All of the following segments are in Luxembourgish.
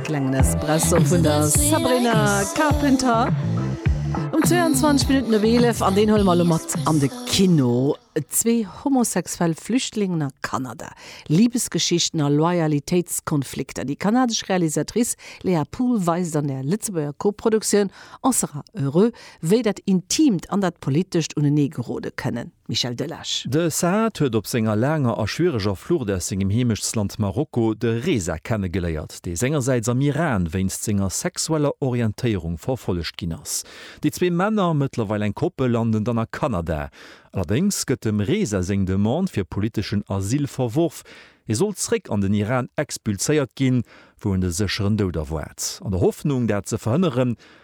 Klengen Espresso vun der Sabrina Carpenter. Um 22 Minutten op 11 an deen huele mer elo mat an de Kino. Zwee homosexuell Flüchtlingen a Kanada, Libesgeschichten a Loyalitéitskonflikter. Déi kanadesch Realisatrice Léa Pool weist an der Lëtzebuerger Koproduktioun On sera heureux, wéi dat Intiimt an dat Politescht uneneegerode kënnen. Michel Delage. De Saad huet op senger laanger a schwiereger Flucht aus sengem Heemechtsland Marokko de Reza kennegeléiert, dee sengersäits am Iran wéinst senger sexueller Orientéierung verfollegt ginn ass. Déi zwee Männer, mëttlerweil eng Koppel, landen dann a Kanada. Allerdéngs gëtt dem Reza seng Demande fir politeschen Asyl verworf. Hie soll zeréck an den Iran expulséiert ginn, wou en de sécheren Doud erwaart. An der Hoffnung, dat ze verhënneren,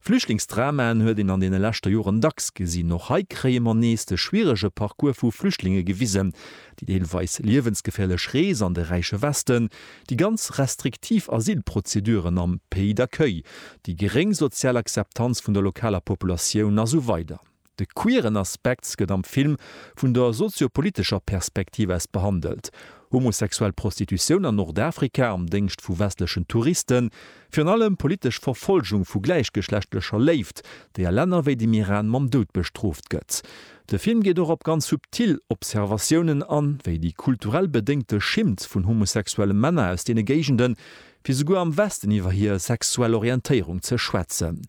Flüchtlingsdramaen huet een an deene leschter Joren dacks gesinn. Och hei kréie mer nees de schwierege Parcours vu Flüchtlinge gewisen, déi deelweis liewensgeféierlech Rees an de räiche Westen, déi ganz restriktiv Asylprozeduren am Pays d'accueil, déi geréng sozial Akzeptanz vun der lokaler Populatioun a sou weider. De queeren Aspekt gëtt am Film vun der sozio-politescher Perspektiv aus behandelt, homosexuell Prostitutioun an Nordafrika am Déngscht vu westlechen Touristen, virun allem politesch Verfolgung vu gläichgeschlechtlecher Léift, déi a Länner wéi dem Iran mam Doud bestrooft gëtt. De Film geet och op ganz subtil Observatiounen an, wéi déi kulturell bedéngte Schimmt vun homosexuelle Männer aus deene Géigenden, fir souguer am Westen iwwer hir sexuell Orientéierung ze schwätzen.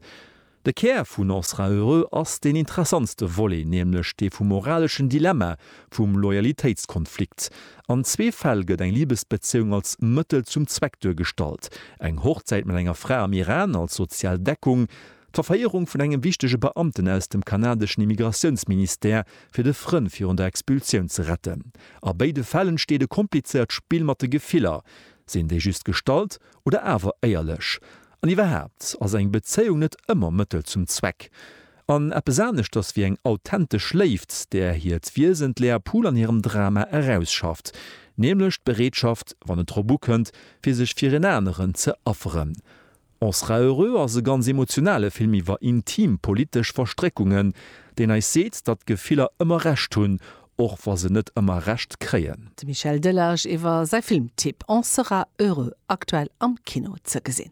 De Kär vun On sera heureux ass deen interessantste Volet, nämlech dee vum moraleschen Dilemma, vum Loyalitéitskonflikt. An zwee Fäll gëtt eng Libesbezéiung als Mëttel zum Zweck duergestallt, eng Hochzäit mat enger Fra am Iran als sozial Deckung, d'Verféierung vun engem wichtege Beamten aus dem kanadeschen Immigratiounsministère, fir de Frënn virun der Expulsioun ze retten. A béide Fäll entsteet e komplizéiert Spill mat de Gefiller, sinn déi just gestallt oder awer éierlech? An iwwerhaapt ass eng Bezéiung net ëmmer Mëttel zum Zweck an eppes aneschters wéi eng authentesch Léift, där hiert Wiesen d'Léa Pool an hirem Drama erausschafft, nämlech d'Bereetschaft, wann et drop ukënnt, fir sech fir en aneren ze afferen. On sera heureux ass e ganz emotionale Film iwwer intim politesch Verstréckungen, deen eis seet, datt d'Gefiller ëmmer Recht hunn, Och wa se net ëmmer Recht kréien. De Michel Delage iwwer säi Filmtipp On sera heureux, aktuell am Kino ze gesinn.